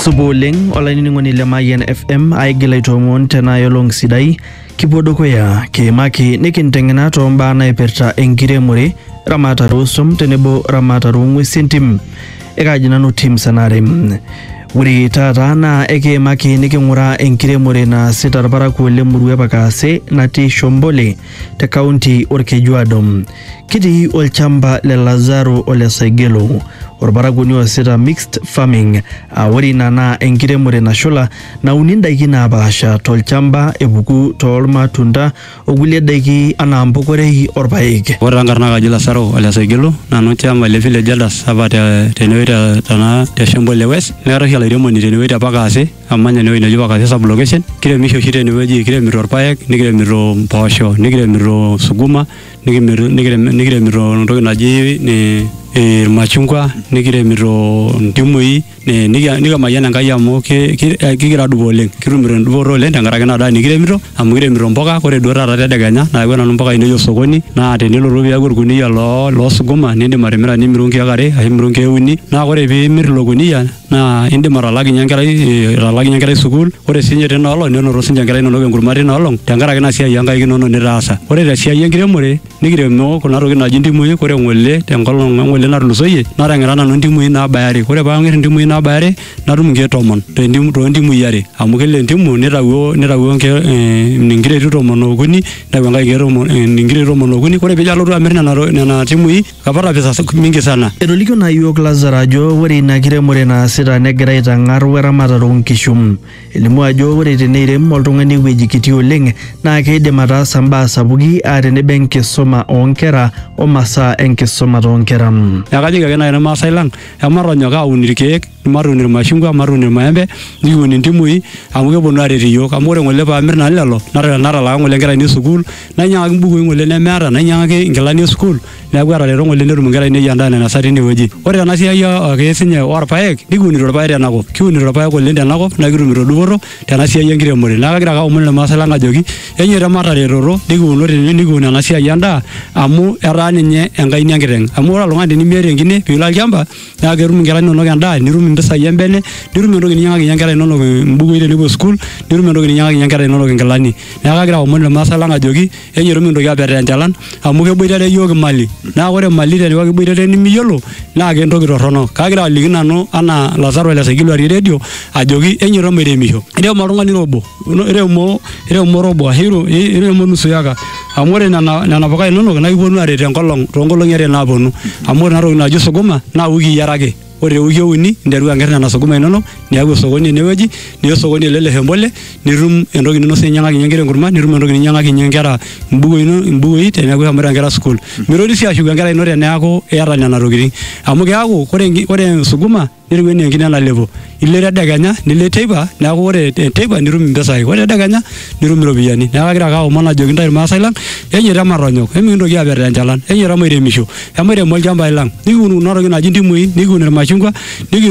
Supa oleng olainining'oni le Mayian FM aigil aitoomon tenaa yolong sidai kipuo dukuya kiimaki nikinteng'ena too mbaa naipirta enkiremore ramatare oosum tenebo ramatare oong'uesi entim ekaaji nanu Tim Sanare. Ore taata naa ekiimaki niking'uraa enkiremore naasita irparakuo le murua e Pakaase natii Shombole te kaunti Olkejuado. Kitii olchamba le Lazaro o le Saigelo, olparakuoni oasita mixed farming aa ore ina naa enkiremore nashula nauni ndaiki naapaasha tolchamba epuku toolmatunda o kulie daiki anaa mpokorei o rpaek. Ore taa nkarna kaji Lasaro ole Saigelo, nanu chairman le village elders apa tenewueji te Shembo le West. Neetae oshi olairemoni tenewueji te Pakase amanya enewueji neji Pakase sub location kiremisho oshi tenewueji kiremito irpaek nikiremito mpoosho nikiremito suguma nikimir- nikirem- nikiremito entoki naji ni- eh, irmachungwa nikiremito ntimui ni- nikia- nikimayian enkai amu ki- ki- eh, kigira adupo oleng kitumito endupoto oleng tenkaraki ina daa nikiremito amu kiremito mpuka ore duo taata tedekenya nayawua nanu mpuka ainei osokoni naa tenilotu piaku orkuniyia loo loo suguma nindim atimira nimiru nkeek are ashu imiru nkeek uni naa ore piimir ilo kuniyia naa indim atalakinye enkerai eh, atalakinye enkerai sukuul ore sinye tina olong nenoto sinye enkerai inonok enkurma tina olong tenkaraki ina siai onkaik inonok nitaasa ore te siai enkiremore nikiremo kuna tokitin naaji ntimui ore ng'ole tenkolong eng'ole natulusoyie natang'ira nanu ntimui naabaya are ore paang'ir intimui naabaya are natum inkeek tomon tentim- toontimui are amu kila entimu nitawuo nitawuo inkeek eh, inkireti tomon okuni nitawuo enkae inkeek tomon eh, inkireti tomon okuni ore pijo alotu amirr nena to- nena timui kapata pesa sa- mingi sana Etolikio naa yiok Lazaro ajo ore ina kiremore naasita negira aitang'ar weramatare oonkishu. Elimu ajo ore teneirem oltung'ani ewueji kiti oleng naa keidim ataasa mbaa sapuki aa tenebo enkisuma oonkera o masaa enkisuma toonkera. neeku kajoki ake naaji irmaasai lang ematonyok aun irkeek matuun irmashungwa matuun irmaembe nikiun intimui amu keponu aret iyiook amu ore ng'ole paamir nanu lelo nata- natalaa ng'ole inkera ainei sukuul nainyiang'aki imbukui ng'ole nemeeta nainyiang'aki inkilani esukuul neeku atareto ng'ole netum inkera ainei endaa nainasa tinewueji ore tena siai o- ake sinye orpayek nikiunito irpayek tenakop kiunito irpayek oleng tenakop naa kitumito dupoto tena siai enkiremore neeku kagira ake aomon irmaasay lang ajoki enyoito mataretoto nikiuno tene nikiun ena siai endaa amu etaa ninye enkaina enkiteng amu ore oltung'ani tenimiata enkine piilo olchamba. neeku ketum inkera inonok endaa nitum impisai embene nitum entoki ninyiang'akinyie inkera inonok imbukui tenepuo school nitum entoki ninyiang'akinyie inkera inonok inkilani neeku kagira aomon irmaasai lang ajoki enyoru mintoki apetaa enchalan amu keboitare iyiook imali naa ore imali teniaku kiboitare nimiyiolo naa kentoki torrono kagira aliki nanu anaa Lazaro le saikilua te redio ajoki enyoito mairemisho irem oltung'ani ira obo. Ino- iremo iremo robo ashu iro- i- iremo nusu yaka amu ore nena nena puka inonok naa kiponu aret enkolong toonkolong'i are naaponu amu ore ena toki naji sukuma naa wiki are ake ore tewiki euni nteru anger nena sukuma inonok niaku osokoni enewueji niya osokoni ele le hembole nitum entoki ninosie ninyiang'akinyie inkera enkurma nitum entoki ninyiang'akinyie inkera imbukui ino- imbukui teneeku ishomoita inkera sukuul mitoki sii ashuku enkerai ino teneeku iyata nena tokitin amu keeku ore enki- ore sukuma netiu enaa enkine nalepo ilo tedekenya nilo teipa neeku ore te- teipa nitum impisai ore tedekenya nitum iropiyiani neeku agira ake aomon ajoki intae irmaasai lang enyeita matonyok emikintoki aper tenchalan enyeita mairemisho emairemo ilchambai lang nikiun kuna tokitin naaji intimui nikiun irmashungwa nikiun